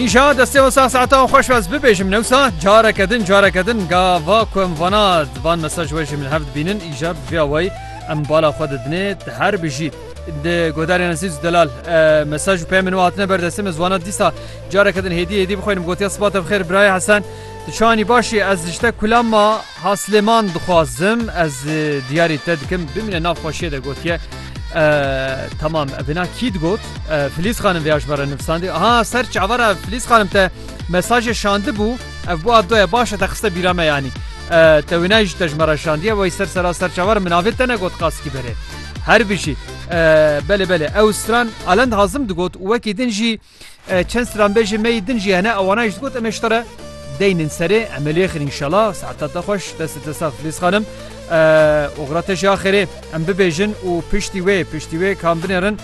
Îşa destê wan sah saetan xweş be ez bibêjim newsa careke din careke din ga va ku em vana van mesaj we jî min hev dibînin îja bi vê awayî em bala xwe didinê te her bijî di godarên ezîz û delal mesaj û peyê min û hatine ber destê min zwana dîsa careke din hêdî hêdî bixwînim gotiya siba te bi xêr birayê hesen tu çanî başî ez dijte kula ma Ha Silêman dixwazim ez diyarî te dikim bimîne nav xweşiyê de gotiye Tamam vêna kî digot Filîz xanim vê ajbara nivsandî ha ser çavara Filîz xanim te mesajê şandibû ev bo abdoye baş e te xiste bîra me yanî te wênayî ji te ji me re şandiye wey ser sera ser çavar min navê te negot qaskî berê her bijî belê belê ew stran alend hazim digot û wekî din jî Çend stranbêjên me yê din jî hene ewana jî digot em ê ji te re deynin serê em ê lêxin înşela saeta te xweş destê te sax Filîz xanim oxira te jî axêrê em bibêjin û piştî wê piştî wê kam binêrin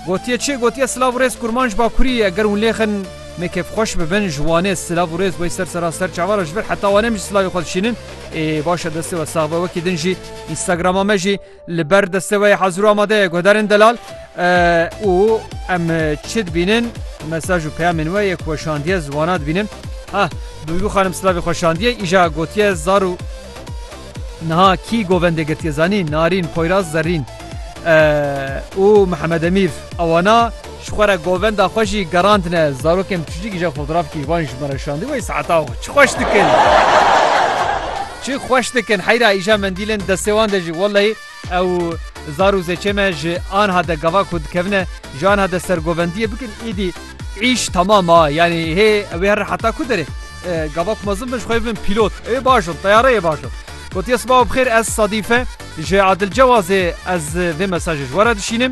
gotiye çi gotiye silav û rêz kurman ji bakurî eger hûn lêxin me kêfxweş bibin ji wanê silav û rêz wey ser sera ser çavara ji vir heta wanem jî silavê xwe dişînin ê baş e destê we sax be wekî din jî Instagrama me jî Li ber desteweyê hezir û amade ye guhdarên delal û em çi dibînin mesaj û peyamên we yek weşandiye ziwana dibînin. Ha Duygû xanim silavê xwe şandiye îja gotiye zar û niha kî govendê girtiye zanî Narîn, Poyraz, Zerrîn û Mihemed Emîr ewana Ji xwe re govenda xwe jî gerandine. Zarokên biçûcik îja fotoğrafkî wan ji me re şandî wey saeta xwe çi xweş dikin. Çi xweş dikin heyra îja mendîlên destê wan de jî wellehî ew zar û zêçê me ji anha de gava ku dikevine ji anha de sergovendiyê bikin îdî îş temam a yanî hê ew ê herin heta ku derê gava ku mezin bin ji xwe bibin pîlot ê baş in teyareyê baş in. Gotiye sibaw bixêr ez Sadife ji Adil Cewazê ez vê mesajê ji we re dişînim.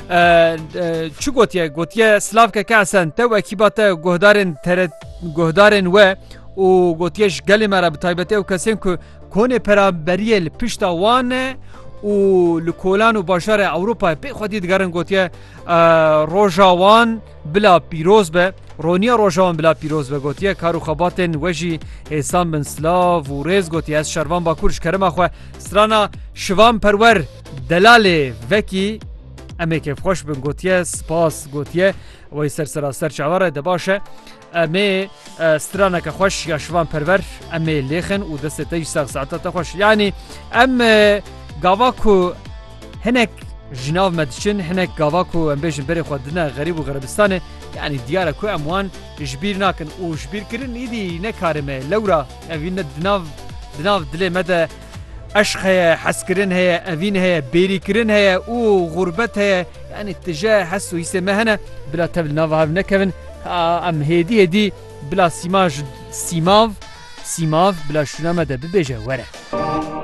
Çi gotiye gotiye Slavke Kasen te û ekîba te guhdarên guhdarên we û gotiye ji gelê me re bi taybetê ew kesên ku konê peraberiyê li pişta wan e û li kolan û bajarê Ewropayê pê xwedî digerin gotiye roja wan Bila pîroz be, Roniya roja wan bila pîroz be gotiye kar û xebatên we jî hêsan bin silav û rêz gotiye ez şervan bakur ji kerema xwe strana şivan perwer delalê vekî emê kêfxweş bin gotiye spas gotiye wey ser seraser çawa re de baş e. Em ê straneke xweş ya şivan perwer em ê lêxin û destê te jî sax saeta te xweş. Yanî em gava ku hinek ji nav me diçin hinek gava ku em bêjin berê xwe dine xerîb û xerebistanê yanî diyar e ku em wan ji bîr nakin û ji bîrkirin îdî nekarime lewra evî ne dinav dinav dilê me de Eşq heye, hezkirin heye, evîn heye, bêrîkirin heye û xûrbet heye. Yanî tije hes û hîsê me hene. Bila tev li nava hev nekevin. Em hêdî hêdî bila sîma ji sîmav sîmav bila şûna me de bibêje were.